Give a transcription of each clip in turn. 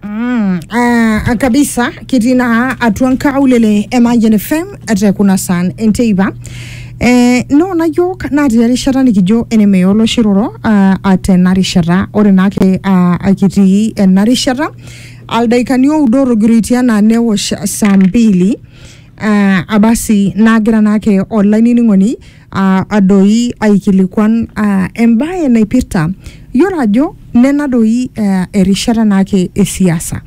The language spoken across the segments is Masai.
Mm, uh, kabisa kitii naa atua nkaulele e Mayian FM te kuna saan enteipa eh, noona yiok natii erishata nikijo enemeya olosho iroro uh, atena rishata ore naake uh, akitii ena rishata aldaikani oudo otogiroitie anaa newosh saa mbili uh, abasi nagira naake olaining'oni aa adoi aikilikuan aa embae naipirta yiolo ajo nena doi aa erishata naake e siasa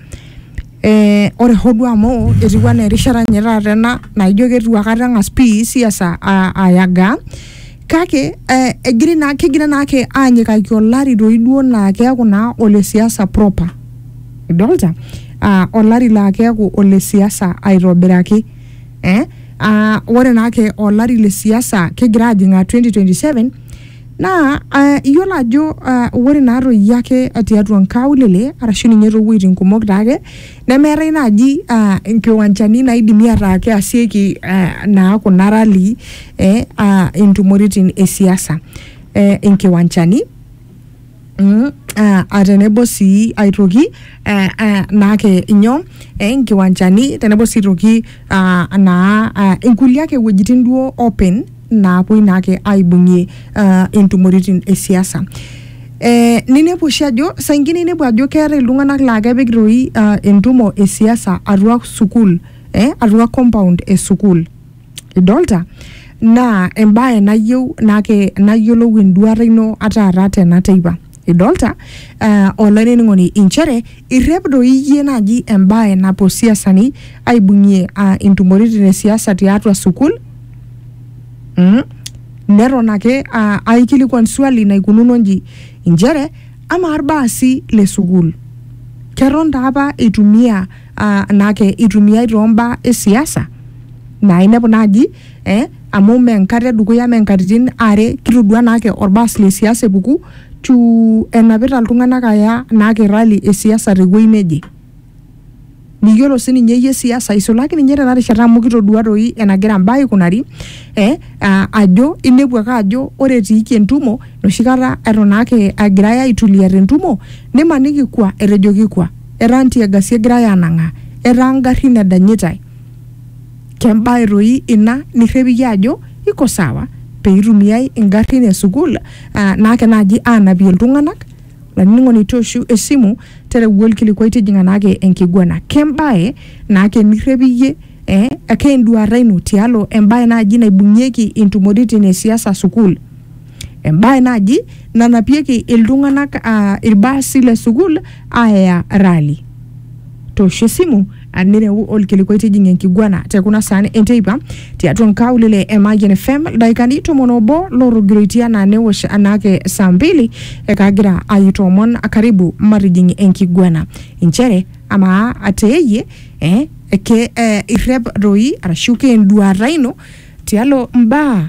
ee ore hoo duo amu etiu enaa erishata ninye taata ena naijo keitu akata eng'as pii siasa aa ayagaa kake ee egiri naa kegira naake aanyikaki olari doi duo laa keeku naa ole siasa proper idolta aa olari laa keeku ole siasa aitobiraki. eh? Ah, ore naake olari le siasa kigira ajing ah, 2027 naa ah, iyiolo ajo ah, ore naatoi ake tiatua nkaulele arashu ninye toowueitin kumok taake nemeetae naaji ah, nkiwanchani naidimi ataa keasieki ah, naa kuna rali eh, ah, intumoritin e siasa eh, inkiwanchani Mm, ah, ah, tenebo sii aitoki eh, eh, naake inyoo eh, inkiwanjani tenebo sii aitoki ah, naa ah, inkulie ake wuejitin duo open naapuoi naake aibung'ie ah, intumoritin e siasa eh, ninepu oshi ajo saa ingine inepu ajo keetae iltung'anak laa kepik toi ah, entumo e siasa atua sukuul eh, atua compound e sukuul idolta naa embae nayieu nake nayiolou enduata ino ataata tena teipa idolta uh, olainining'oni inchere irrep doi iyie naaji embae napuo siasani aibung'ie uh, intumoritin e siasa tiatua sukul mm? neton ake uh, aikilikuan swali naikununo nji inchere amaa irbaasi le sukul keton taa apa eitumia ah, naake itumiai toombaa e siasa naa inepu naaji eh, amu mee enkata edukuya mee nkatitin are kitodua naake orbaas le siasa epuku tu enapita iltung'anak aya naake rally e siasa tewuei neje miyiolo sininye iyie siasa isulaki ninye tena rishata amu kitodua toi enagira imbaa aikunari eh, aa, ajo inepu ake ajo ore etiiki entumo enoshi kata eton ake agirai aitulia tentumo nimaniki kwa etejoki kwa etaa ntiagasi egirai aanang'aa, etaa ngarrin edanyitai. Kembae toi ina nirrep iyie ajo iko sawa pee itumiai ngarrin e sukuul naake naaji aanapie iltung'anak? Olainining'oni tooshu esimu tereu olkilikuai tijing'a naake enkiguana. Kembae naake nirrep iyie ee ake enduata ino tialo embae naaji naibung'ieki intumoritin e siasa sukuul? Embae naji nanapieki iltung'anak aa ilbaasi le sukuul aaya rali. Toosho esimu aa nireu olkilikuai tijing enkiguana te kuna saan enteipa tiatua nkaulele e Mayian FM ildaikani tomon obo lootogiroitie anaa newosh anaake saa mbili ekagira aitoomon karibu matijing enkiguana. Inchere amaa ateeyie eh, ke eh, irrep doi arashu keenduaata ino tialo mbaa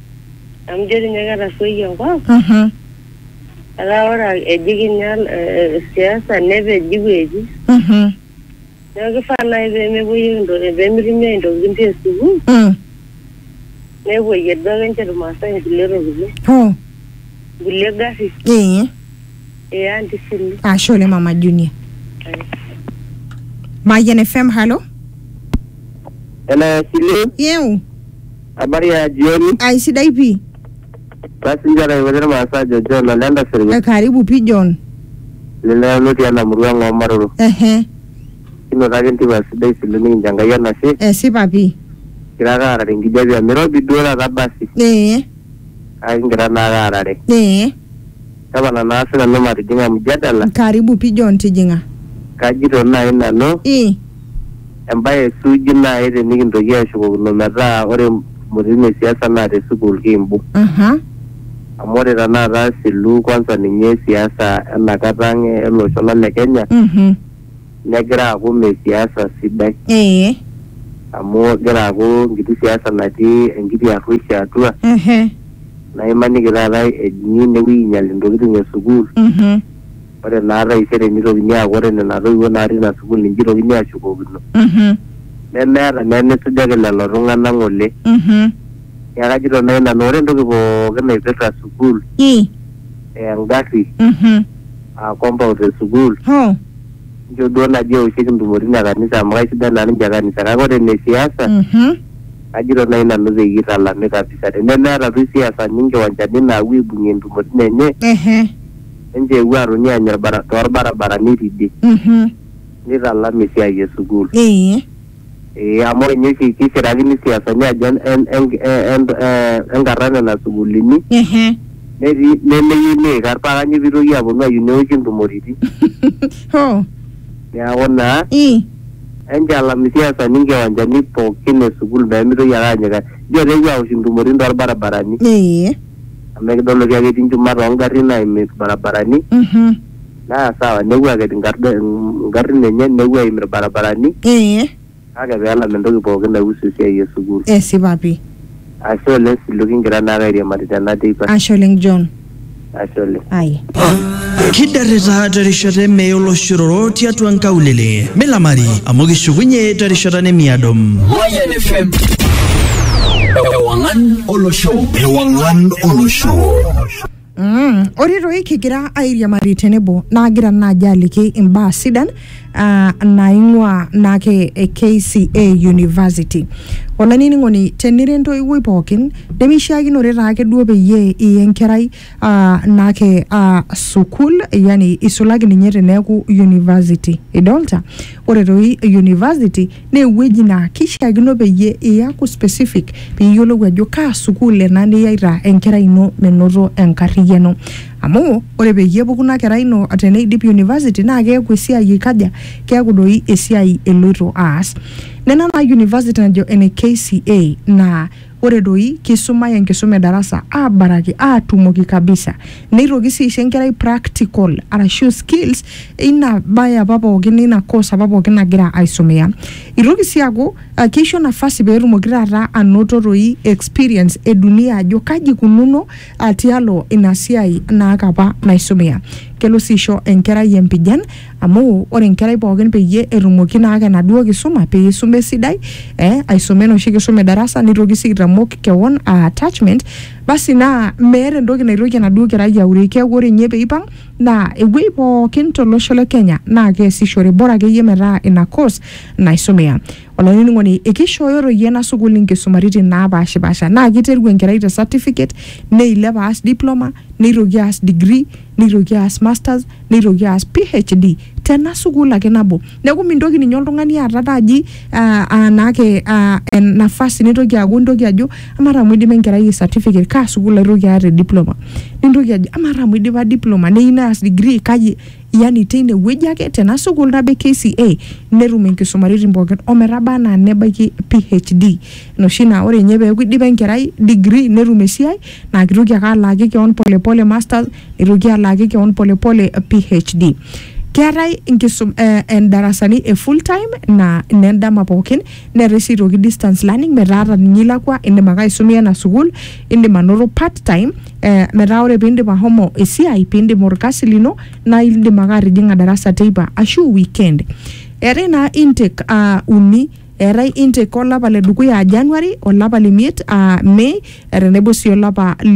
Amu ijo tinye ketarruoyie enkop. Mhm. Etaa ore eji kinya eh, eh, siasa nepeji wueji. Mhm. Neeku kifaa nai pemepuoyieki intokitin pemitumiai intokitin te sukuul, Mm. nepuoyie duo ake nche irmaasai inkulie tokitin. Oh. Inkulie garrin. Ee. Ee anti Sulu. Ashe oleng Mama Junior. Mayian FM, halo. Hello, Sile. Yeu. Habari ya jioni. ai sidai pii Basi njara iwete irmaasa ajo John ole Ndasirnya. Eh, karibu pii john Leleo lotii ena murua ng'oo maroro. ehe Kinoto ake entipa sidai silo nikincho Enkai enashe. esipa pii Kigira ake aarare enkijape amu irobi duo taata basi. ee Kake kigira naa ake aarare. ee Tapala naa sinanu matijing'a mjadala. karibu pii john tijing'a Kajito naai nanu. ii Embae suuji naai tenikintoki ashukokino metaa ore mpukunotin e siasa naa te sukuul kiimbu. Amu ore tenakata asilu kwanza ninye siasa ena kata ang ele osho lang le Kenya negira aaku mme siasa sidai. Amu egira aaku enkiti siasa natii enkiti arruoishi atua naa imaniki taata ejing'i inewueji ainyal intokitin e sukuul Ore naa taisere neitokini aaku ore nena toiwuo natii ina sukuul ninche eitokini aashukokino. Nemeeta naa enisujaki lelo tung'ana ng'ole. Neaku ajito naaji nanu ore entoki pooki naipirta sukuul aa engarri aa compound e sukuul inchoo duo naaji eoshieki intumoritin e kanisa amu kaisidai naa ninche kanisa kake ore ine siasa kajito naaji nanu peyie eitalami kabisa tenemeeta duo isiasani inkiwanchani naapuo aibung'ie intumoritin enye. ninche eewuo aatoni aanya ilbara- too lbarabarani tidie Mhm. neitalam esiai e sukuul. Ee. Ee amu ore ninye oshi keishirakini isiasani ajo en- en- en- en- ee enkarna nena sukuulini Ehe. netii nemeyieu neikar paa kanyoo pee eitoki aaponu ayieu neoshi intumoritin. Hoo. Neaku naa Ii. enchalam isiasani inkiwanjani pookin e sukuul pee meitoki ake aanyikaki. Ijo etaa epuo aosh intumoritin too lbarabarani. Ee. amu ekidol oshi ake etii nchumat oo ngarrin aim ilbarabarani Mhm. naa sawa nepuo aket inkarda ingarrin enye nepuo aim ilbarabarani Ee. kake peelam entoki pooki naihusu esiai e sukuul. Esipa pi. Ashe oleng Silu kigira naake airiamari tena teipa. Ashe oleng John. Ashe oleng. Ai. kidarrita terishata eme oloshororo tiatua nkaulele milamari amu kishukunye terishata nemiado Mayan FM. Ewangan Olosho. Ewangan Olosho. Mm, ore toi kigira airiamari tenebo naagira naaji aliki imbaa sidan uh, naing'ua naake e KCA University. Olainining'oni tenira entoiwuoi pookin nemeishiakinore taake duo peyie iya enkerai uh, naake uh, sukul yani isulaki ninye teneeku university idolta ore toi university naa ewueji naa kishiakino peyie iyaku specific piyiolou ajo kaa sukul ena niyaita enkerai ino menoto enkarriyiano amu ore peyie epuku ina kerai ino teneidip university naa keeku esiai ikaja keeku doi esiai eloito aas nena naa university najo ene KCA naa Ore doi, keisumai enkisuma e darasa aabaraki aatumoki kabisa. Neitoki sii aisho enkerai practical arashu skills eina bae apa pookin, eina course apa pookin nagira aisomea. Eitoki sii aaku keisho nafasi pee etumoki taata anoto doi experience e dunia ajo kaji eikununo tialo ina siai naake apa naisumea. Kelo sii aisho enkerai empijan. amu ore enkerai pookin peyie etumoki naake enaduo kisuma peyie isuma esidai eh, aisuma enoshi kisuma e darasa nitoki sii aitamok kewon uh, attachment basi naa meeta entoki naitoki enaduo kerai aure keeku ore ninye peipang naa ewuei pookin tolosho le kenya naa keesishore bora akeyie metaa ina course naisumia olainining'oni ekishooyo toi ena sukuul inkisumaritin naapashipasha naa kiteru enkerai te certificate neilep aas diploma neitoki aas degree neitoki aas masters neitoki aas PhD tena sukuul ake nabo. Neeku mintoki ninye oltung'ani aata taji ah, ah, naake ah, en- nafasi nintoki aaku intoki ajo amaa taa amu idipa enkerai e certificate kaa sukuul aitoki aata e diploma. Nintoki ajo amaa taa amu idipa diploma neyieu neas degree kaji yani teine wueji ake tena sukuul nabo e KCA netum inkisumaritin pookin o metaba enaa nebaiki PhD. Enoshi naa ore ninye peeku idipa enkerai degree netum esiai naa kitoki ake alaaki keon pole pole masters eitoki alaaki kewon polepole PHD. Keetae inkisum eh, eh, darasani e full time naa inendama pookin neetae sii aitoki distance learning metaa ata ninye ilakua indim ake aisumia ina sukuul indim anoto part time eh, metaa ore piindip ahomo esiai piindip orkasi lino naa indim ake atijing'a darasa teipa ashu weekend. Eetae naa intake uh, uni eetae intake olapa le dukuya aa January olapa le miet aa May tenebo sii olapa